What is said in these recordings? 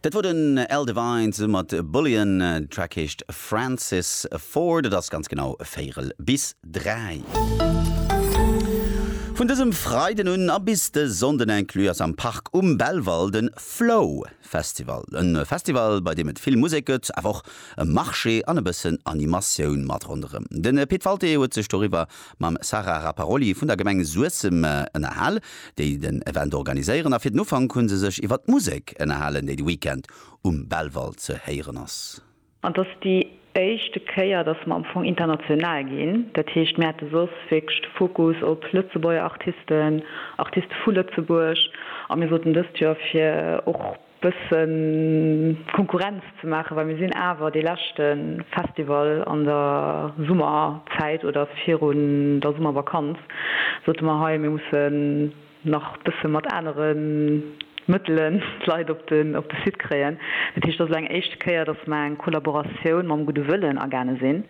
Dat wor den Al Devine zesumme mat Bullion. Den Track heescht Francis Ford. Et ass ganz genau véierel bis dräi. Vun dësem Freiden un a bis de Sonnden inclus ass am Park um Belval de Flow Festival. E Festival, bei deem et vill Musek gëtt, awer och e Marché an e bëssen Animatioun mat ronderëm. De Pit Walté huet sech doriwwer mam Sara Rapparoli vun der Gemeng Suessem ënnerhal, déi den Event organiséieren a fir den Ufank hu se sech iwwer d'Musek ënnerhalen, déi de Weekend um Belval ze héieren ass. An et ass déi éischte Kéier, datt mer am Fong international ginn. Dat heescht, mir hate soss wierklech de Fokus op Lëtzebuerger Artisten, Artiste vu Lëtzebuerg a mir soten dëst Joer fir och, bëssen Konkurrenz ze maachen, well mir sinn awer dee leschte Festival an der Summerzäit oder virun der Summervakanz, sote mer hei, mir mussen nach bësse mat anere Mëttelen d'Leit op de Site kréien. Dat heescht, et ass elo eng éischte Kéier, datt mer eng Kollaboratioun mam gudde Wëllen agaange sinn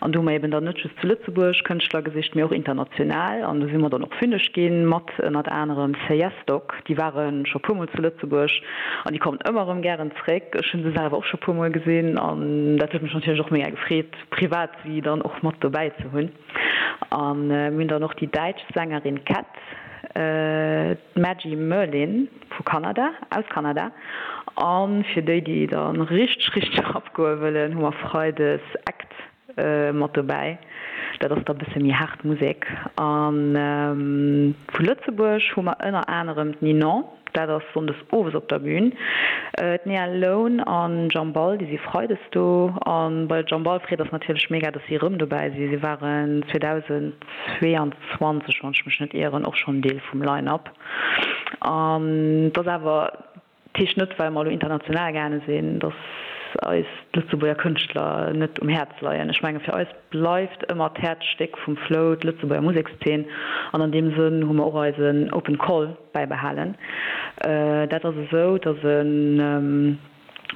an do hu mer eben dann net just zu Lëtzebuerg Kënschtler gesicht, mee och international an do si mer dann och fünneg gi mat. Projekt, ënnert anerem Seyesdoc, déi ware scho puer Mol zu Lëtzebuerg an déi kommen ëmmer erëm gären zréck. Ech hu se selwer och scho puer Mol gesinn an dat huet mech natierlech och mega gefreet, privat si dann och mat dobäi ze hunn. A mir hunn dann och déi däitsch Sängerin Cat, d'Maggie Merlin vu Kanada, aus Kanada. A fir déi, déi dann richteg, richteg abgoe wëllen, hu mer freides Act. Mat dobäi. Dat ass da bësse méi haart Musek. A vu Lëtzebuerg hu mer ënner anerem d'Ninon, dat ass sonndes owes op der Bün. D'Nea Lone an Jambal, déi si freides do. A bei Jambal freet eis natierlech méga, dass si erëm dobäi sinn. Si waren 2022, wann ech mech net ieren, och schonn Deel vum Line-Up. An et ass awer. Dat heescht net, well mer elo international gaange sinn, datt eis d'Lëtzebuerger Kënschtler net um Häerz leien. Ech menge fir eis bleift ëmmer d'Häerzstéck vum Flow d'Lëtzebuerger Musekszeen an an deem Sënn hu mer och eisen Open Call bäibehalen. Dat ass esou, datt en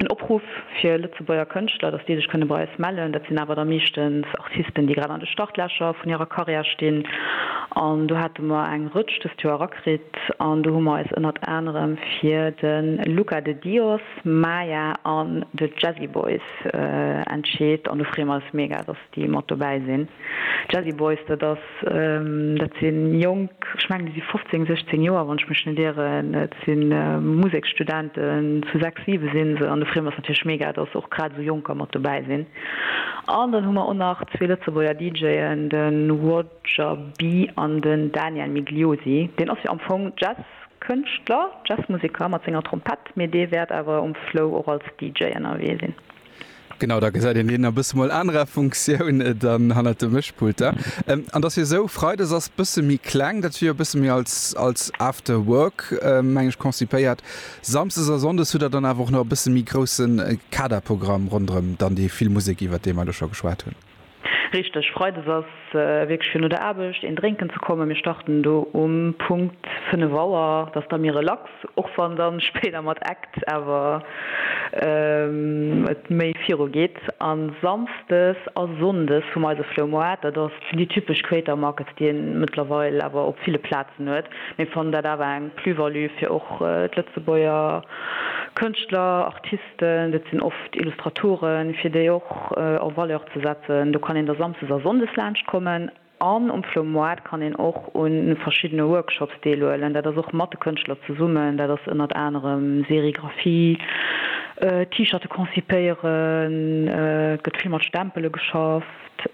Opruff fir. Lëtzebuerger Kënschtler, datt déi sech kënne bei eis mellen. Dat sinn awer da meeschtens Artisten, déi grad an de Startlächer vun hirer Karriär stinn. An do hate mer eng Rëtsch dëst Joer erakritt. An do hu mer eis ënnert anerem fir de Luca de Dios, Maya an The Jazzy Boys entscheet. An do freeë mer eis mega, déi mat dobäi sinn, d'Jazzy Boys, dat ass, dat si Jonk, ech mengen déi si 15, 16 Joer, wann ech mech net ieren, et si Museksstudenten, zu sechs, siwe si se an da freeë mer eis natierlech mega, dass och grad esou Jonker mat dobäi sinn an dann hu mer och nach zwee Lëtzebuerger DJen, de Roger B an den Daniel Migliosi, deen ass jo am Fong Jazzkënschtler, Jazzmuseker mat senger Trompett, mee dee wäert awer um Flow och als DJ ënnerwee sinn. Genau, da gesäit een deen a bësse mol anerer Funktioun dann hannert de Mëschpult da. An dass hie sou, Freides ass bësse méi kleng, dat wier e bësse méi als als after work, meng ech, konzipéiert. Samsdes a Sonndes hutt Der dann awer och nach e bësse méi grousse Kaderprogramm ronderëm dann déi vill Musek, iwwert déi mer elo scho geschwat hunn. Richteg, Freides ass wierklech fir no der Aarbecht een drénken ze kommen. Mir starten do um Punkt 5 Auer, dat ass da méi relax, och wann dann spéider mat Act awer et méi viru geet. An Samsdes a Sonndes hu mer eise Floumoart, dat ass déi typesch Creator Markets, déi een mëttlerweil awer op ville Plazen huet. Mir fannen dat awer eng Plus-value fir och d'Lëtzebuerger Kënschtler, Artisten. Dat sinn oft Illustratoren, fir déi och en Valeur ze setzen. Do kann een da samsdes a sonndes laanscht kommen. An um Flo Moart kann een och un verschiddene Workshops deelhuelen. Dat ass och mat de Kënschtler zesummen. Dat ass ënnert anerem Serigraphie, T-Shirte konzipéieren, et gëtt vill mat Stempele geschafft.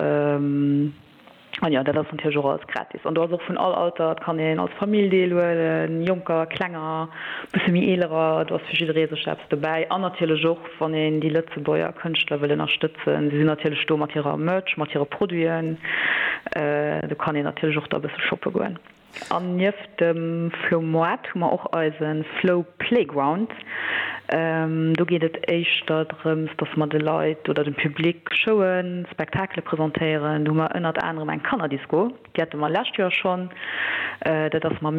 An jo, dat ass natierlech och alles gratis. An do ass och vun all Alter, et kann een als Famill deelhuelen, Jonker, Klenger, bësse méi Eelerer, do ass fir jidderee sech eppes dobäi. An natierlech och, wann een déi Lëtzebuerger Kënschtler wëll ënnerstëtzen, si sinn natierlech do mat hirer Merch, mat hire Produiten, do kann een natierlech och da bësse shoppe goen. An nieft dem Flow Moite hu mer och eise Flow Playground. Do geet et éischter drëms, dass mer de Leit oder dem Public Showen, Spektakele presentéieren. Do hu mer ënnert anerem eng Kannerdisko, déi hate mer lescht Joer schonn. Dat ass mam.